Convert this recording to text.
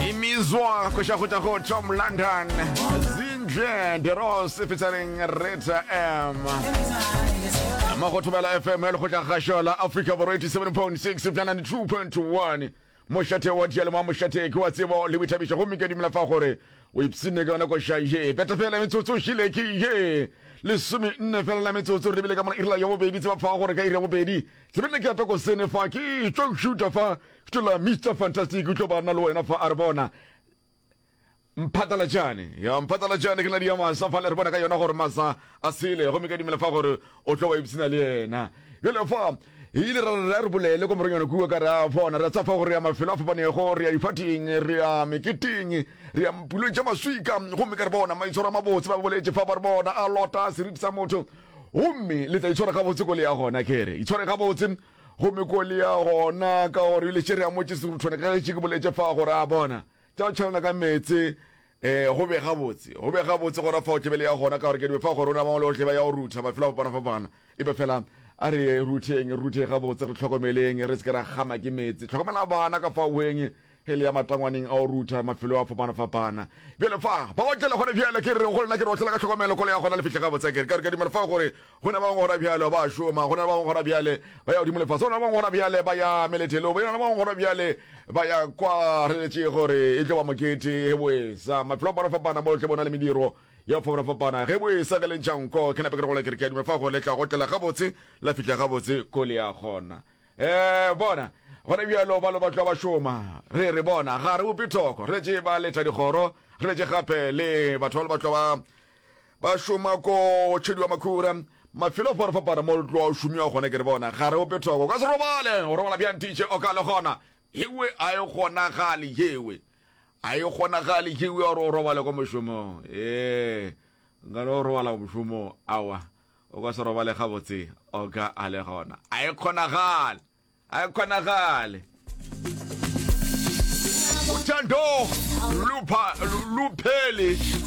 imizwa kuxakuta ku tom london zindle deros featuring reta m mo go thobela fm ya lekgotla gašo la africa borwa 87.6 bja 92.1 mošate wa dialemo wa mošate ke wa tsebo le boithabišo gomme ke dumela fa gore o ipsene ka yona koša ye peta fela metsotso o šile ke ye lesome nne fela la metsotso re lebile ka mona irela ya bobedi tseba fa gore ka iri ya bobedi Ke be ne ke ata ko sene fa, ke tlo šuta fa, ke tlo la Mister Fantastic, ke tlo ba na le wena fa, a re bona. Mphatlalatšane, ya mphatlalatšane, ke na le ya masa fa, le re bona ka yona gore masa a sele, gomme ka dimela fa gore o tlo ba ipsina le yena. Bjale fa, e ile ra re a re bolele ko moronyana kua ka re a bona, re a tsa fa gore ya mafelo a fapanego, re ya difateng, re ya meketeng, re ya mpulong tša maswika, gomme ka re bona maitshwaro a mabotse, ba boletše fa ba re bona a lota seriti sa motho, Gomme le tla itshwara gabotse ko le ya gona, ke re, itshware gabotse gomme ko le ya gona, ka gore bile šere a motše seruthwane ka gešo ke boletše fa gore a bona tša go tšhalana ka meetse, e, go be gabotse, go be gabotse gona fao tebele ya gona, ka gore ke dibe fa gore o na mangwe le ohle ba ya go rutha mafelo a fapana-fapana, e be fela a re rutheng, re rutheng gabotse, re tlhokomeleng, re se ke ra kgama ke meetse. Tlhokomela bana ka fa weng, e le ya matangwaneng a go rutha mafelo a fapanafapana. Bjale fa ba otlela gona bjale, ke re go lena, ke re otlela ka tlhokomelo kolo ya gona le fihle gabotse. Ke re ke a dumela fa gore go na ba bangwe gona bjale ba a šoma, go na le ba bangwe gona bjale ba ya godimo le fase, go na le ba bangwe gona bjale ba ya melethelong, go na le ba bangwe gona bjale ba ya kwa re letše gore e tlo ba mokete. Ge boesa mafelo a fapanafapana mo tle bona le mediro ya go fapanafapana, ge boesa ge le ntšha nko, ke nape ke re go lena, ke re ke a dumela fa gore le tla go otlela gabotse la fihle gabotse kole ya gona. Ee, bona, gona bjalo ba lobatlwa ba šoma. Re re, Bona, ga re upe thoko. Re letše ba letha dikgoro, re letše gape le batho ba lobatlwa ba ba šoma ko tšhediwa makhura, mafelo a fapafapana mo tloa o šomiwa gona. Ke re, Bona, ga re upe thoko. O ka se robale, o robala bjang titše? O ka le gona. Yewe, a e kgonagale, yewe. A e kgonagale, yewe, gore o robale kwa mošomong. Ee, nka no robala mošomong. Awa. O ka se robale gabotse, Oka a le gona. A e kgonagale! A e kgonagale! Uthando Luphele.